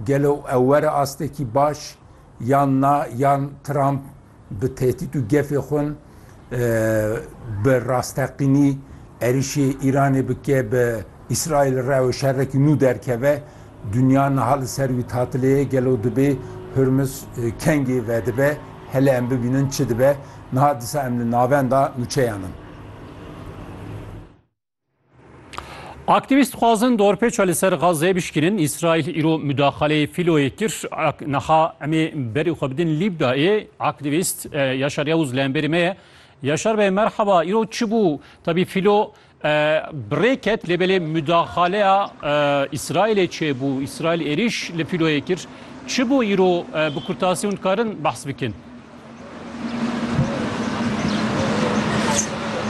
Gelo ew were astekî baş yan na yan Trump bi tehdît û gefê xwe bi rasteqînî êrişî Îranê bike bi Îsraîlê re û şerekî nû derkeve dinya niha li ser wî tatilê ye gelo dibê Hurmuz kengê vedibe hele em bibînin çi dibe niha disa em li navenda nûçeyan in. Aktîvîst xwazin dorpêça li ser Gazê bişkînin. Îsraîl îro mudaxaleyê fîloyê kir. Niha em ê berê xwe bidin Lîbdayê. Aktîvîst Yaşar Yavuz li hemberî me ye. Yaşar bey merheba. Îro çi bû? Tabî fîlo bi rê ket lê belê mudaxaleya Îsraîlê çêbû. Îsraîl êrîş li fîloyê kir. Çi bû îro bi kurtasî hûn dikarin behs bikin?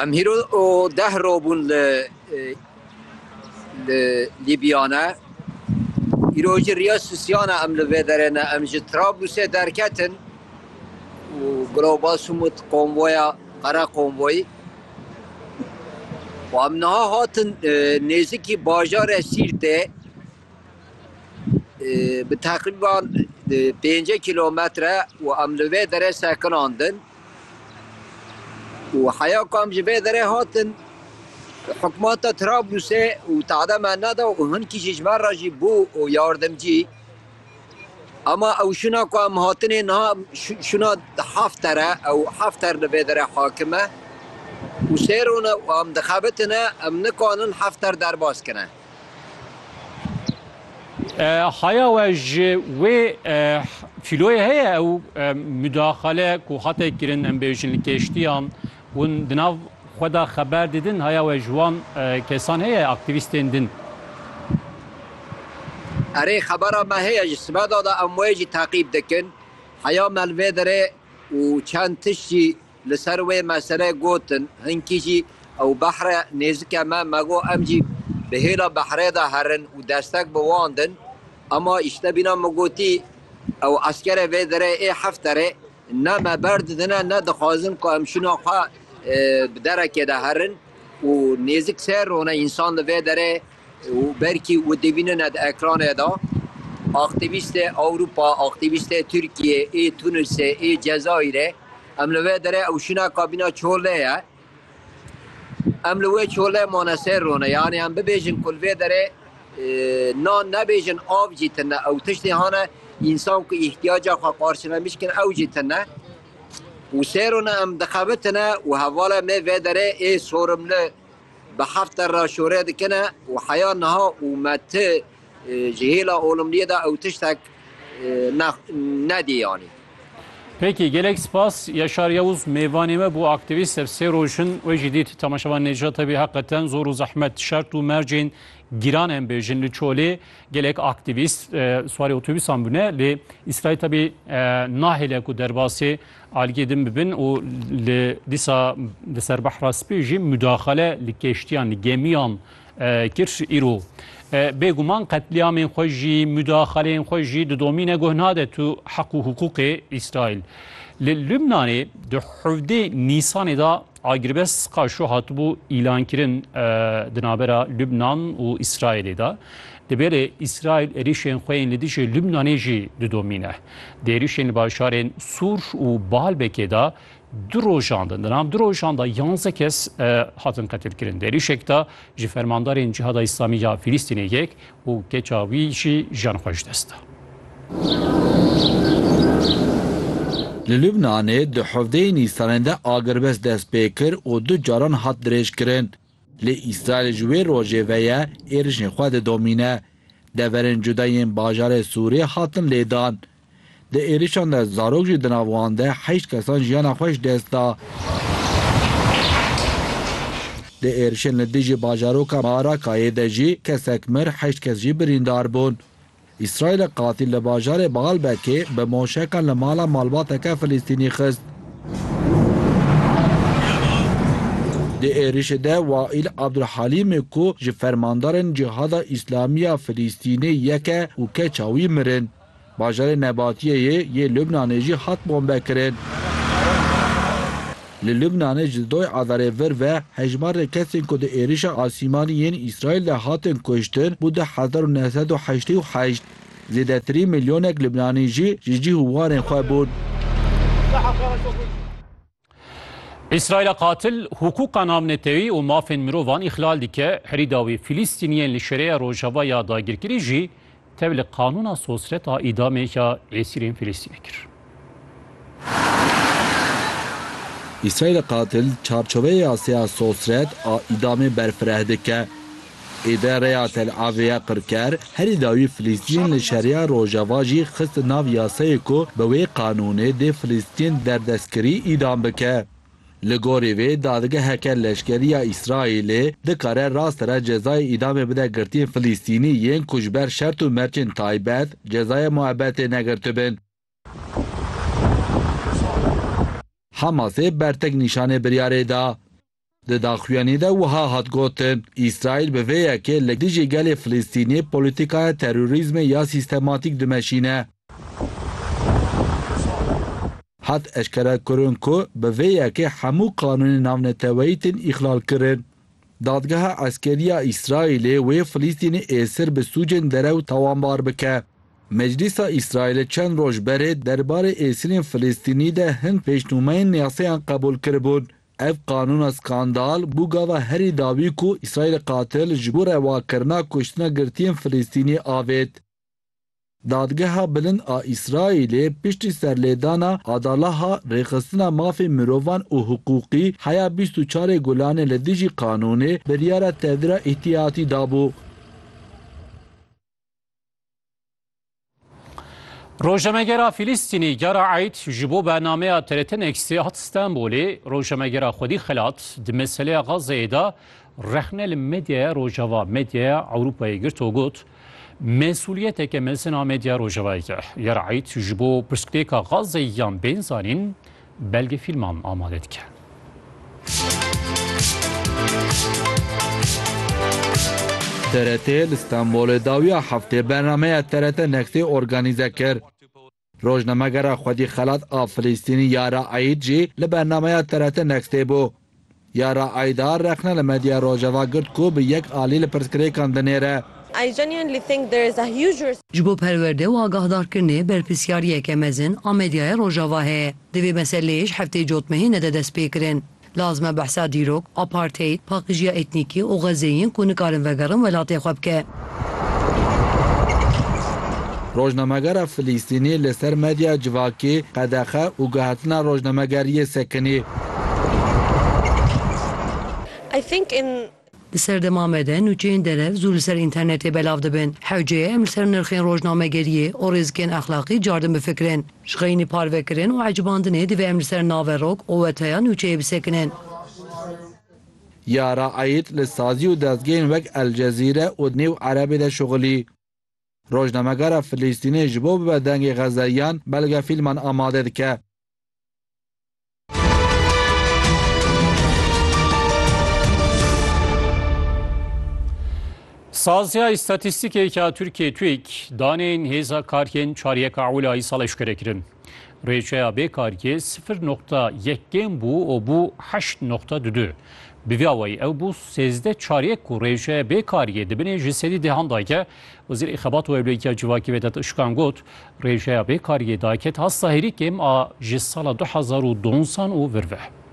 Em hîro deh roj bûn li li Lîbya ne. Îro jî riya sisiyan e em li vê derê ne. Em ji Trablusê derketin û Giroba Sumut konvoya qere konvoyî û em niha hatin nêzikî bajarê Sîrtê. Bi teqrîban pêncî kîlometre û em li vê derê sekinandin û heya ku em ji vê derê hatin hikûmeta Trablusê û tade me neda û hinkî jî ji me re jî bû û yardimcî. Ema ew şûna ku em hatinê niha şûna Hafter e. Ew Hafter li vê derê hakim e û sêr rûne û em dixebitine em nikarin Hafter derbas kine. Haya we ji wê fîloyê heye ew müdaxale ku hate kirin em bêjin li keştiyan hûn di nav xwe de xeber didin haya we ji wan kesan heye aktivîstên din. Erê xebera me heye ji sibeda de em wê jî teqîb dikin. Heya me li vê derê û çend tişt jî Li ser wê mesele gotin, hinkî jî ew behre nêzik e me, me got em jî bi hêla behrê de herin û destek bi wan din. Ema îştebîna min gotî, ew eskerê vê derê ê Hefterê ne me berdidine ne dixwazin ku em şûna xwe bi derekê de herin û nêzik sê rone însan li vê derê û berkî û dibînine di ekranê de aktîvîstê Ewropa, aktîvîstê Tirkiyê ê Tunisê ê Cezayirê em li vê derê ew şîna kabîna çolê ye. Em li wê çolê mane sê rone yanî em bibêjin ku li vê derê nan nebêjin av jî tine ew tiştê hane însan ku îhtiyaca xwe qarşilemiş dikin ew jî tine û sê rone em dixebitine û hevalê me vê derê ê sorimli Bi heft der re şore dikin e û heya niha û me ti ji hêla olumliyê de ew tiştek ne nedî yanî. Peki gelek spas Yaşar Yavuz mêvanê me bû aktivîst ev sê roj in wê jî dît temaşevan Nêcat hebî heqeten zor û zehmet şert û mercên gîran em bêjin li çolê gelek aktivîst swarê otobîsan bûne lê îsraîl tebî nahêle ku derbasê Algê din bibin û li dîsa li ser behra spî jî mudaxale li keştiyan li gemiyan kir îro bêguman qetlîamên xwe jî mudaxaleyên xwe jî didomîne guh nade tu heq û hiqûqê îsraîl li lubnanê di hevdê nîsanê da Agirbest qaşo hatibû îlankirin di navbera Lubnan û Îsraîlê de. Dibe lê Îsraîl êrîşên xwe yên li dijî Lubnanê jî didomîne. Di êrîşên li bajarên Sûr û Baalbekê de du rojan de di nav du rojan de yanze kes hatin qetilkirin. Di êrîşek de ji fermandarên Cihada Îslamî ya Filîstînê yek Û keça wî jî jiyan xwe ji dest da. Li Lubnanê di hevdeyê Nîsanê de agirbest dest pê kir û du caran hat dirêjkirin. Lê Îsraîl ji wê rojê ve ye êrişên xwe didomîne. Deverên cuda yên bajarê Sûriyê hatin lêdan. Di êrişan de zarok jî di nav wan de heşt kesan jiyana xwe ji dest da. Di êrişên li dijî bajaroka Maarakayê de jî kesek mir, heşt kes jî birîndar bûn. Îsraîlê qatî li bajarê Baalbekê bi moşekan li mala malbateke Filistînî xist. Di êrişê de Waîl Abdulhalîmê ku ji fermandarên Cihada Îslamî ya Filistînê yek e û keça wî mirin. Bajarê Nebatiyeyê yê Lubnanê jî hat bombekirin. Li Lubnanê ji doy adarê vir ve hejmarê kesên ku di êrişa asîmanî yên Îsraîl de hatin kuştin bû du hezar û neh sed û heştê û heşt. Zêdetirî milyonek Lubnanî jî ji cih û warên xwe bûn. Îsraîla qatil hukûka navnetewî û mafên mirovan îxlal dike, herîda wî Filîstîniyên li şereya rojava ya dagirkirî jî tev li qanûna sosreta îdamê ya êsîrên Filîstînê kir. Îsraîla qatil çarçoveya sêya sosret a îdamê berfireh dike. Îde rêya Tel Avî ya qirker, herî dawî Filîstîn li Şeriya Rojava jî xist nav yasayê ku bi wê qanûnê dê Filîstîn derdestkirî îdam bike. Li gorî vê dadgeheke leşkeriya Îsraîlê dikare rast re cezayê îdamê bide girtiyên Filîstînî yên ku ji ber şert û mercên taybet cezaya muebetê negirtibin. Hamasê bertek nîşanê biryarê da. Di daxuyanî de wiha hat gotin, Îsraîl bi vê yekê li dijî gelê Filistînê polîtîkaya terorîzmê ya sîstematîk dimeşîne. Hat eşkerekirin ku bi vê yekê hemû qanûnên navneteweyî tên îxlal kirin. Dadgeha Eskerî ya Îsraîlê wê Filistînê êsir bi sûcên derew tawanbar bike. Meclîsa Îsraîlê çend roj berê derbarê êsirên Filistînî de hin pêşnûmeyên yasayan qebûl kiribûn. Ev qanûna skandal bû gava herî dawî ku Îsraîlê qatil ji bo rewakirina kuştina girtiyên Filistînî avêt. Dadgeha Bilind a Îsraîlê piştî serlêdana Adalaha Rêxistina Mafên Mirovan û Hiqûqî heya bîst û çarê Gulanê li dijî qanûnê biryara tevdira îhtiyatî dabû. Rojnamegera Fîlîstînî cara Eid ji bo bernameya TRT Nextê hat Stenbolê rojnamegera xwedî xilat di meseleya Xazzeyê de rexne li medyaya Rojava medyaya Ewropayê girt û got mesûliyeteke mezin a medya Rojavayê ye. Yara Eid ji bo pirsgirêka Xazzeyê yan bên zanîn belgefîlman amade dike. TRT li Stenbolê dawiya heftê bernameya TRT Nextê organîze kir. Rojnamegera Xwedî Xelat a Filîstînî Yara Eîd jî li bernameya TRT Nextê bû. Yara Aydar rexne li medyaya Rojava girt ku bi yek alî li pirsgirêkan dinêre. Ji bo perwerde û agahdarkirinê berpirsyariyeke mezin a medyaya Rojava heye. Di vê meseleyê ji hefteyê cotmehê nede destpêkirin. Lazim e behsa dîrok, apartheid, paqijiya etnîkî û xezê yên ku nikarin vegerin welatê xwe bike. Rojnamegera Filîstînî li ser medya civakî qedexe û gihatina rojnamegeriyê sekinî. Di serdema me de nûçeyên derev zû li ser înternetê belav dibin. Hewceye em li ser nirxên rojnamegeriyê û rêzikên exlaqî cardin bifikirin. Ji xeyinî parvekirin û ecibandinê divê em li ser naverok û weteya nûçeyê bisekinin. Yara Eid li sazî û dezgehên wek El Cezîre û New Erebê de şixulî. Rojnamegera Filîstînê ji bo bibe dengê Xezeyiyan belgefîlman amade dike. Saziya Îstatîstîkê ya Tirkiyê, TÜİK, daneyên hêza kariyên çar yeka Ewlûyayî sal eşkere kirin. Rêçeya bê kargê sifir noqta yek kêm bû û bû heşt noqta du du. Bi vî awayî ew bû sêzdeh çariyek ku rêçeya bê kargê di binê ji sedî dêhan dayke. Wezîrê Xebat û Ewlehiya Civakî Vedat Işkan got, Rêçeya bê kargê dayke tahsil hêrî kêm a ji sala du hezar û di onsan û vir ve.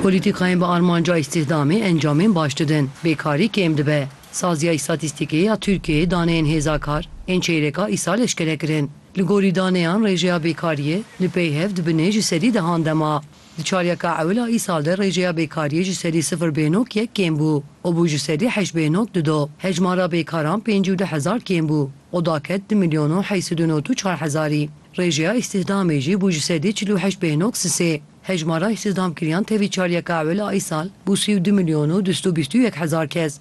Polîtîkayên bi armanca îstîhdamê encamên baş didin, bêkarî kêm dibe. Saziya Îstatîstîkê ya Tirkiyeyê daneyên hêza kar ên çeyreka îsal eşkere kirin. Li gorî daneyan rêjeya bêkariyê li peyhev di binê ji sedî dehan de ma. Di çaryeka ewil a îsal de rêjeya bêkariyê ji sedî sifir bê nok yek kêm bû û bû ji sedî heşt bê nok du do. Hejmara bêkaran pêncî û du hezar kêm bû û da ket di milyon û heysî du not û çar hezarî. Rêjeya îstihdamê jî bû ji sedî çil û heşt bê noks sê. Hejmara îstihdamkiriyan tevî çaryeka ewil a îsal bû sî û du milyon û du sed û bîst û yek hezar kes.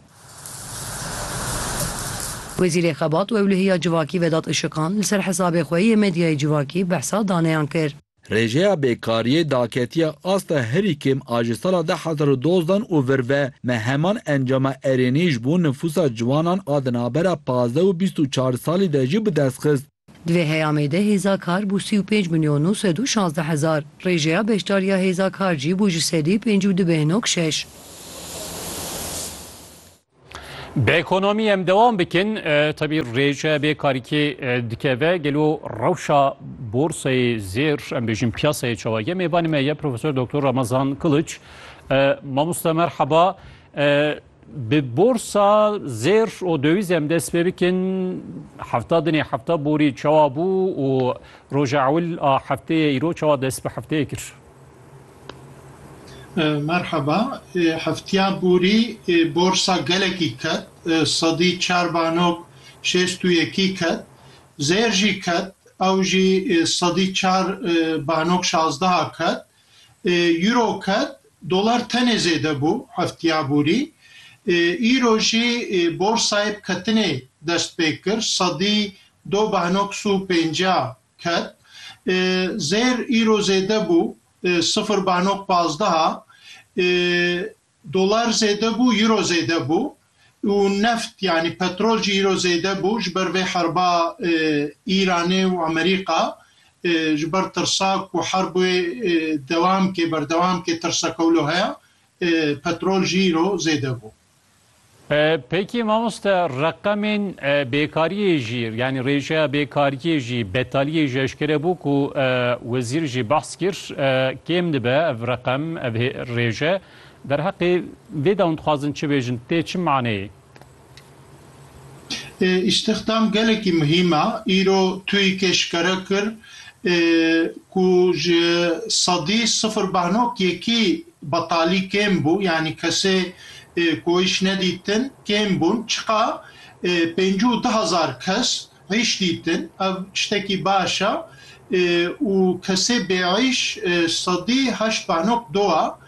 Wezîrê Xebat û Ewlehiya Civakî Vedat Işiqan li ser hesabê xwe yê medyayê civakî behsa daneyan kir. Rêjeya bêkariyê daketiye asta herî kêm a ji sala du hezar û dozdan û vir ve me heman encama erênî ji bo nifûsa ciwanan a di navbera pazdeh û bîst û çar salî de jî bi dest xist. Di vê heyamê de hêza kar bû sî û pênc milyon nû sed û şazdeh hezar. Rêjeya beşdariya hêza kar jî bû ji sedî pênc û du bêhna û şeş. Bi ekonomî em dewam bikin, tevî rêjeya bêkarîkê dikeve, gelo rewşa borsayê zêr em bêjin piyasayê çawa ye? Mêvanê me ye Profesor Doktor Ramazan Kiliç. Mamoste merheba. Bi borsa zêr û döwîz em dest pê bikin. Hefta dinê hefta borî çawa bû û roja ewil a hefteyê îro çawa dest bi hefteyê kir? Merhaba. Hefteya borî borsa gelekî ket. Sedî çar banok şêst û yekî ket. Zêr jî ket. Ew jî sedî çar banok şazdeha ket. Euro ket, dolar tenê zêde bû heftiya borî. Îro jî borsayê bi ketinê dest pê kir, sedî do behnoks û pêncîya ket. Zêr îro zêde bû, sifir behnok pazdeha. Dolar zêde bû, euro zêde bû û neft yanî petrol jî îro zêde bû ji ber vê herba Îranê û Amerîka ji ber tirsa ku herbê dewam bike berdewam bike tirsa ku wilo heye petrol jî îro zêde bû. Peki mamoste reqemên bêkariyê jî yanî rêjeya bêkariyê jî betaliyê jî eşkere bû ku wezîr jî behs kir kêm dibe ev reqem ev rêje derheqê vê de hûn dixwazin çi bêjin tê çi maneyê? Îstixdam gelekî muhîm e. Îro TUIK'ê eşkere kir ku ji sedî sifir beh nok yekî betalî kêm bû yanî kesê ku îş nedîtin kêm bûn, çiqa pêncî û du hezar kes îş dîtin, ev tiştekî baş e û kesê bêîş sedî heşt banok dowa.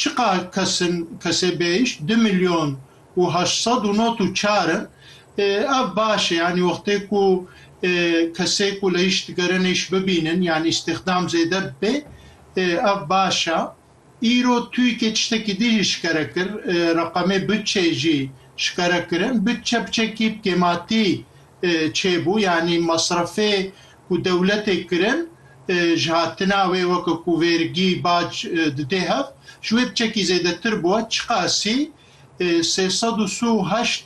Çiqa kes in kesê bêîş? Du milyon û heşt sed û not û çar in. Ev baş e, yanî wextê ku kesê ku li îş digerin îş bibînin, yanî îstîxdam zêde bibe, ev baş e. Îro TUYK'ê tiştekî din jî şikere kir, reqemê butçeyê jî şikere kirin. Butçe biçekî bi kêmatî çêbû yanî mesrefê ku dewletê kirin ji hatina wê weke ku vêrgî, bac didê hev ji wê biçekî zêdetir bûye. Çiqasî sê sed û si û heşt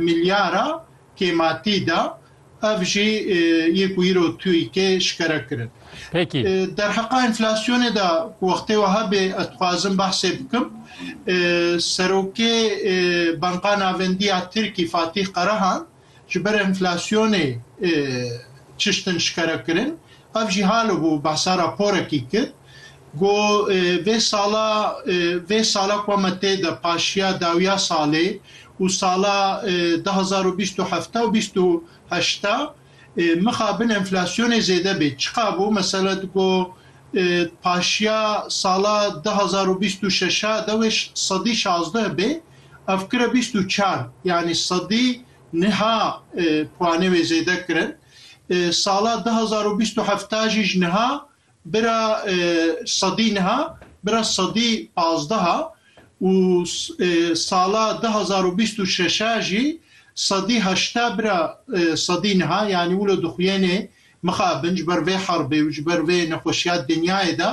milyara Kêmatî da, ev jî yê ku îro TUYKê şikere kirin. Derheqa enflasyonê de ku wextê wiha bê ez dixwazim behsê bikim, Serokê Banka Navendî ya Tirkî Fatîh Karahan ji ber enflasyonê çiştin şikere kirin Ev jî halo bû behsa raporekî kir ku vê sala vê sala ku me tê de paşiya dawiya salê û sala du hezar û bîst û heft û bîst û heşt mixabin enflasyonê zêde bê. Çiqa bû mesela di ku paşiya sala du hezar û bîst û şeş de wê sedî şazdeh bê ev kire bîst û çar yanî sedî niha puanê wê zêde kirin. Sala du hezar û bîst û heft jî ji niha bira sedî niha bira sedî pazdeh e û sala du hezar û bîst û şeş jî sedî heşte bira sedî niha yanî wilo dixuyênê mixabin ji ber vê herbê û ji ber vê nexweşiya dinyayê de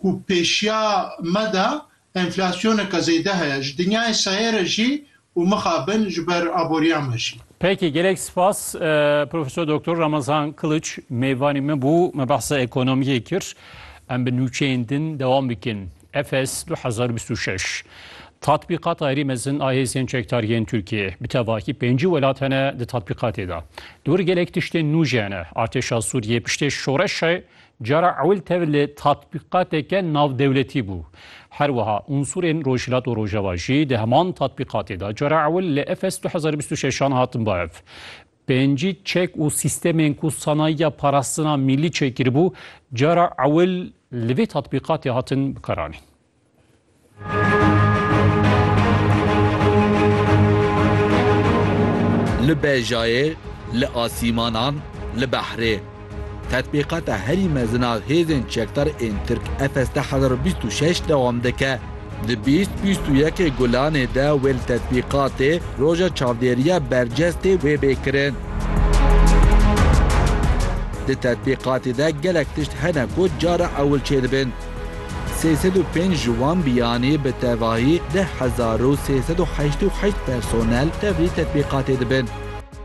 ku pêşiya me de Enflasyoneke zêde heye ji dinyayê sayê re jî û mixabin ji ber aboriya me jî. Peki gelek spas Profesor Doktor Ramazan Kılıç mêvanê me bû me behsa ekonomiyê kir em bi nûçeyên din dewam bikin Efes du hezar û bîst û şeş Tatbîqata herî mezin a hêzên çekdar yên Tirkiyeyê bi tevakî pêncî welat hene di tatbîqatê de li wir gelek tiştên nû jî hene artêşa Sûriyê piştê şoreşê Cara ewil tev li tatbîqateke navdewletî bû. Her wiha unsurên Rojhilat û Rojava jî di heman tatbîqatê de cara ewil li Efes du hezar û bîst û şeşan hatin bav. Pêncî çek û sîstemên ku sanayiya parastina mîlî çêkiribû cara ewil li vê tatbîqatê hatin bikaranîn. Li bejayê, li asîmanan, li behrê. Tetbîqata herî mezin a hêzên çekdar ên Tirk FST hezar û bîst û şeş dewam dike. Di bîst, bîst û yekê Gulanê de wê li tetbîqatê Roja Çavdêriya Bercest tê wê bê kirin. Di tetbîqatê de gelek tişt hene ku cara ewil çêdibin. Sê sed û pênc ji wan biyanê bi tevahî deh hezar û sê sed û heşt û heşt personel tevlî tetbîqatê dibin.